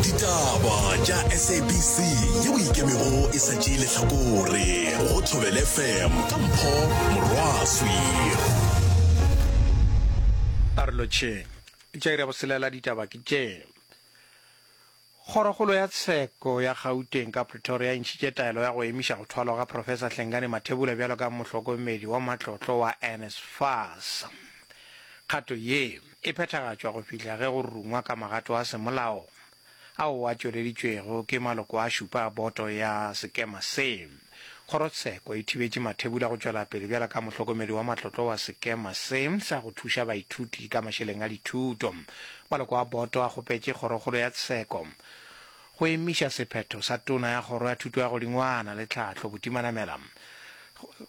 ditaba tša sabc ye o ikemego e sa tšee lehlakore go thobele fm ka mpho morwaswi karolo tše tša ira boselela ditaba ke tše Kgorokgolo ya tsheko ya Gauteng ka Pretoria e ntšhitše taelo ya go emiša go thwalwa ga Professor Hlengane Mathebula bjalo ka mohlokomedi wa matlotlo wa NSFAS. Kgato ye e phethagatšwa go fihla ge go rungwa ka magato a semolao ao a tšweleditšwego ke maloko a šupa a boto ya sekema se. Kgorotsheko e thibetše Mathebula go tšwela pele bjalo ka mohlokomedi wa matlotlo wa sekema se sa go thuša baithuti ka mašeleng a dithuto. Maloko a boto a kgopetše Kgorokgolo ya Tsheko go emiša sephetho sa Tona ya Kgoro ya Thuto ya Godingwana le Tlhahlo Butimanamela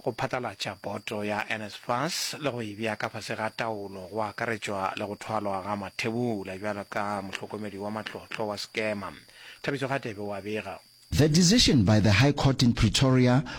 go phatlalatša boto ya NSFAS le go e bea ka fase ga taolo go akaretšwa le go thwalwa ga Mathebula bjalo ka mohlokomedi wa matlotlo wa Skema, Thabiso Radebe o a bega. The decision by the High Court in Pretoria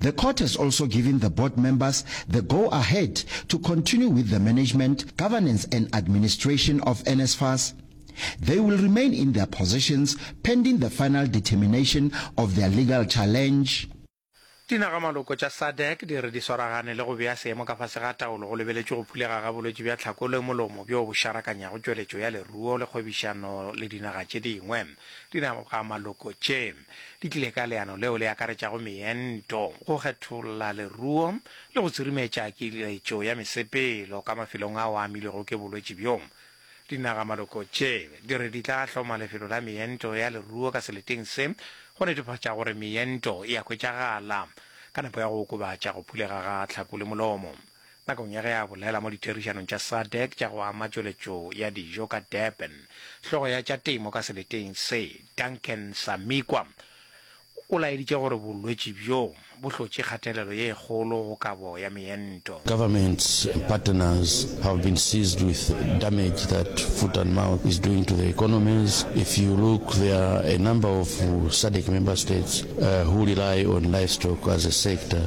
The court has also given the board members the go ahead to continue with the management, governance and administration of NSFAS. They will remain in their positions pending the final determination of their legal challenge. Dinaga-maloko tša SADC di re di swaragane le go bea seemo ka fase ga taolo go lebeletšwe go phulega ga bolwetši bja tlhako le molomo bjo bo šarakanyago tšweletšo ya leruo le kgwebišano le dinaga tše dingwe. Dinaga-maloko tše. di tlile ka leano leo le akaretšago meento, go kgetholla leruo le go tsirimetša kiletšo ya mesepelo ka mafelong ao a amilwego ke bolwetši bjo. Dinagamaloko tše di re di tla hloma lefelo la meento ya leruo ka seleteng se go netefatša gore meento e a hwetšagala ka nako ya go okobatša go phulega ga tlhaku le molomo. Nakong ya ge a bolela mo ditherišanong tša SADC tša go ama tšweletšo ya dijo ka Durban, hlogo ya tša temo ka seleteng se, Duncan Samikwa, o laeditše gore bolwetši bjo bo hlotše kgatelelo ye kgolo go kabo ya meento. Governments and partners have been seized with damage that foot and mouth is doing to their economies. If you look, there are a number of SADC member states who rely on livestock as a sector.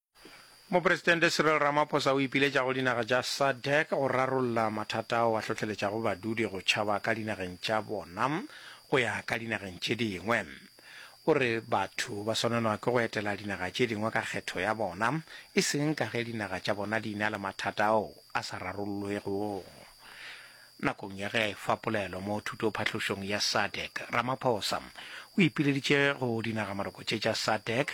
Mopresidente Cyril Ramaphosa o ipiletša go dinaga tša SADC go rarolla mathata ao a hlohleletšago badudi go tšhaba ka dinageng tša bona go ya ka dinageng tše dingwe. O re batho ba swanelwa ke go etela dinaga tše dingwe ka kgetho ya bona, e seng ka ge dinaga tša bona di na le mathata ao a sa rarollwego. Nakong ya ge a efa polelo mo thutophatlošong ya SADC, Ramaphosa o ipileditše go dinagamaloko tše tša SADC,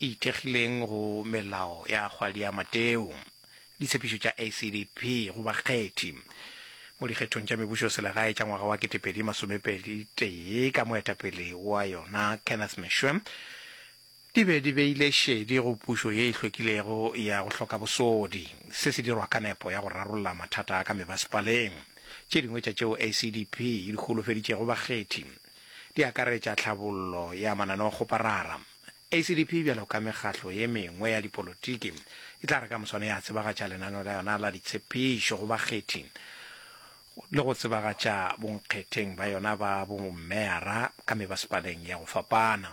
e ithekgileng go melao ya kgwadi ya Mateo, ditshepišo tša ACDP go bakgethi mo dikgethong tša mebušoselegae tša ngwaga wa 2021 ka moetapele wa yona Kenneth Meshwe, di be di beile šedi go pušo ye e hlwekilego ya go hloka bosodi, se se dirwa ka nepo ya go rarolla mathata a ka mebasepaleng. Tše dingwe tša tšeo ACDP e di holofeditšego bakgethi di akaretša tlhabollo ya mananeo-kgoparara, ACDP bjalo ka mekgatlo ye mengwe ya dipolotiki e tla re ka moswane ya tsebagatša lenaneo la yona la ditshephišo go bakgethi le go tsebagatša bonkgetheng ba yona ba bommeara ka mebasepaleng ya go fapana.